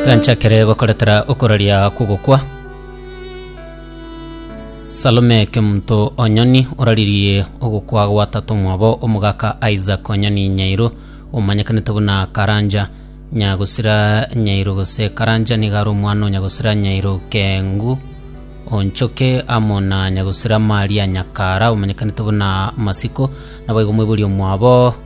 Kanchakere gokoretera okoraria kogokwa. Salome Kemunto Onyoni oraririe ogokwa gwa tato mwabo omogaka Isaac Onyoni Nyairo omanyekanete buna Karanja Nyagosira Nyairo gose Karanja niga are omwana o Nyagosira Nyairo Kengu Onchoke amo na Nyagosira Maria Nyakara omanyekanete buna Masiko. Naboigo moiborie omwabo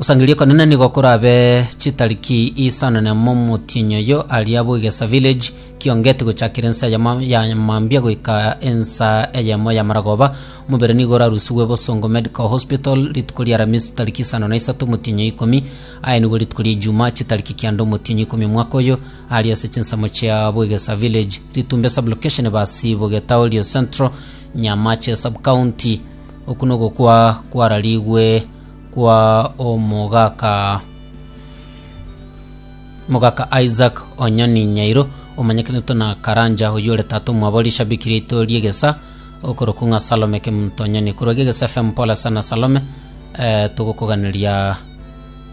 Osangereria okonene nigo korabe chitariki isanane momotienyi oyo aria bw'egesa village kiongeti gochakera ensa yamo ya mambia goika ensa eyemo ya maragoba omobere nigo orarusigwe bosongo medical hospital rituko ria aramisi tariki isano na isato omotienyi oyo ikomi aye nigo rituko ria ejuma chitariki kianda omotienyi ikomi omwaka oyo aria ase chinsemo chia bw'egesa village ritumbe sublocation basi bogetaorio central nyamache subcounty Oku nogokwa kwararigwe kwa omogaka Mogaka Isaac Onyoni Nyairo, omanyekanete na Karanja, oyio ore tata omwabo rishabiki riaito ri'egesa okorokwa ng'a Salome Kemunto Onyoni. Korwa Gegese FM pole sana Salome, eh, togokoganeria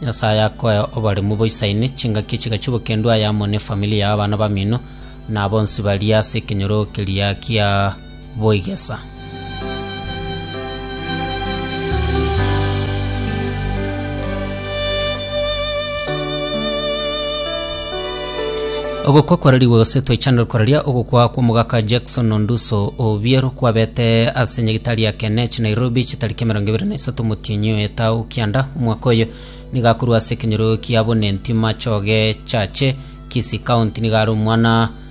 Nyasaye akoe oboremu boisaine, chingaki echigachu bokendwe aya amo ne efamili yao, abana bamino, na bonsi baria ase ekenyoro keria kia. boigesa. Ogokwa kwararigwe gose twaichanire koraria ogokwa kw'omogaka Jackson Onduso Obiero kwabete ase nyagitari ya Kenech Nairobi chitariki emerongo ebere na isato omotienyi oyo etao kianda omwaka oyo nigo akorwa ase ekenyoro kia Bonenti Machoge Chache Kisii County nigo are omwana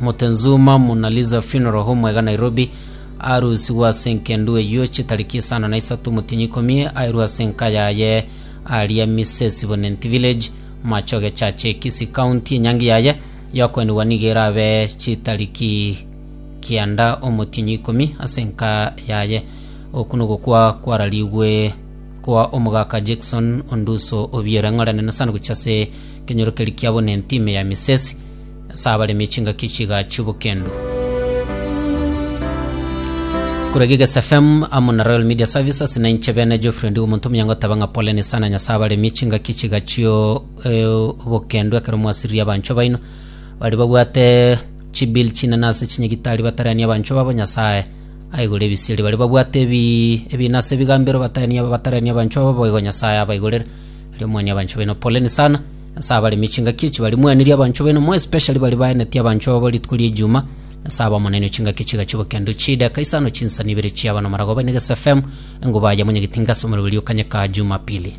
Mutenzuma Muna Liza Funeral Home iga Nairobi, arusigwe ase engendu eyio eche tariki isano na isato omotienyi ikomi, airwe ase enka yaye aria Misesibonent Village, Machoge Church, Kisii County. Enyangi yaye yokoenigwa nigo erabe chitariki kianda omotienyi ikomi ase enka yaye. Oku nogokwa kwararigwe kwa omogaka Jackson Onduso Obiero, eng'oranene sana gochia ase ekenyoro keria kiabonenti ime ya Misesi. Ase abaremi chingaki chigaachio bokendu. Korwa Gigese FM amo na Royal Media Services na inche bene Geoffrey Ndigo omonto omuya ngoteba ng'a poleni sana Nyasae abaremie chingaki chigachio eh, obokendu ekero mwasiririe abanchwa baino bari babwate chibil chinene ase chinyagitari batarania abanchwa babo Nyasae aigure ebisieri bari babwate ebi ebina ase ebigambero batarania batarania abanchwa babo boigo Nyasae abaigurere riomwani abanchwa baino poleni sana Ase abaremi chingaki echi barimweneria abanchwa baino, more especially baria baenetie abanchwa babo rituko ri'ejuma. Ase aba Omonene chingaki chigachikwa kende chideka isano chinsani ibere chiaba nomaragoba inegesa fm, enguba yamonye getinga ase omoriberio kanyeka Jumapili.